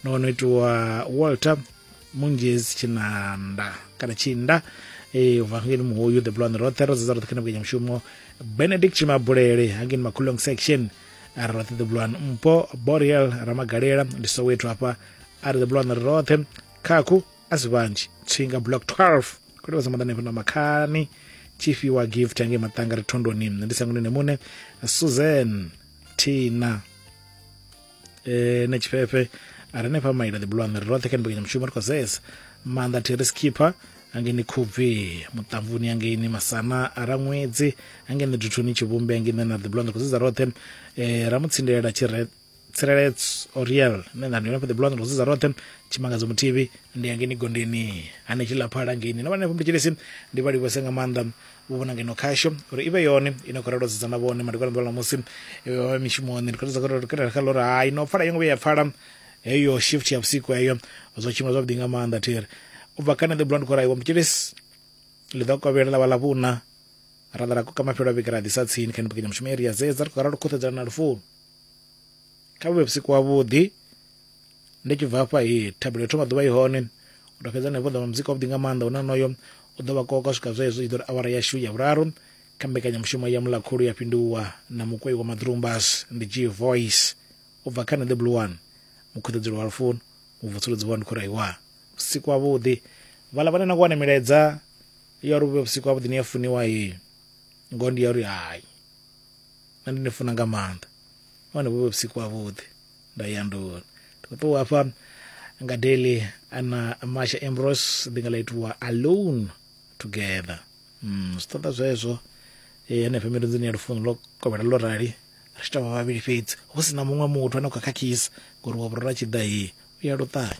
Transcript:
no ono itiwa walter munjezi tshinanda kana tshinda eh ubva ngeni muhoyu the blonde roṱhe ro dzedza roṱhe kana vhukenya mushumo benedict tshimabulele hangeni makhulong section ari roṱhe the blonde mpo boriel ramagalela ndi soweto hafha ari the blonde ri roṱhe khakhu a si vhanzhi tshinga block 12 kule vha samaḓa nefho na makhani tshifhiwa gift hangei maṱanga ri thondoni ndi sangunene muṋe susan tina eh, na tshifhefhe a re nefha maila the blue ri roṱhe kha mbekanyamushumo ri khou zesa maanḓa thiri skipper angeni khubvi muṱamvuni angeni masana a ra ṅwedzi angeni duthuni tshivhumbi angeni na the blue ri khou zesa roṱhe eh, ra mu tsindelela tshire tsireledzo oriel nṋe nda ndi hone fha the blue ri khou zesa roṱhe tshimangadzo muthivi ndi angeni gondeni hanetshi laphala ngeni na vhanefho mutshilisi ndi vha livhose nga maanḓa vho vhona ngeno khasho uri i vhe yone ine khou ralo dzedza na vhone madekwana ḓuvha ḽa musi vha vhe mishumoni ndi khou ṱoḓa kha uri kha ḽori hai no pfala yo ngo vhuya ya pfala heyo shift ya vhusiku heyo zwo tshimbila zwavhuḓi nga maanḓa thiri u bva kha nṋe ḓi bula ndi khou raiwa mutshilisi ḽi ḓo kovhela ḽa vha ḽa vhuna ra ḓa ra koka mafhelo a vhege ra ḓisa tsini kha mbekanyamushumo iri ya dzedza ri khou ralo khuṱhedzana na lufuno kha vhu vhe vhusiku wavhuḓi ndi tshi bva hafha hi thabelo thoma ḓuvha i hone u to fhedza hanefho ḓa muzika wavhuḓi nga maanḓa une onoyo u ḓo vha koka swika zwezwo i ḓo ri awara yashu ya vhuraru kha mbekanyamushumo ya mulakhulu ya fhinduwa na mukwei wa maḓrumbas ndi g voice u bva kha neḓe blue one mukhuṱedzelo wa lufuno mubvusuludzi wa ndikhoraiwa vhusiku havhuḓi vhala vhane na ku wane milaedza ya uri vhu vhe vhusiku havhuḓi ni ya funiwa he ngoho ndi ya uri hai na ndi ni funa nga maanḓa nahone vhu vhe vhusiku havhuḓi ndo ya ndo ndi khou ṱuwa hafha nga daily ana masha embros ndi nga ḽa itiwa alone together mm, zwi ṱoḓa zwezwo e, henefho mirunzini ya lufuno lwo kovhela lwo rali ri tshi tovha vhavhili fhedzi hu si na muṅwe muthu ane u kha khakhisa ngori wa vhurora tshi ḓa hei u ya luṱanya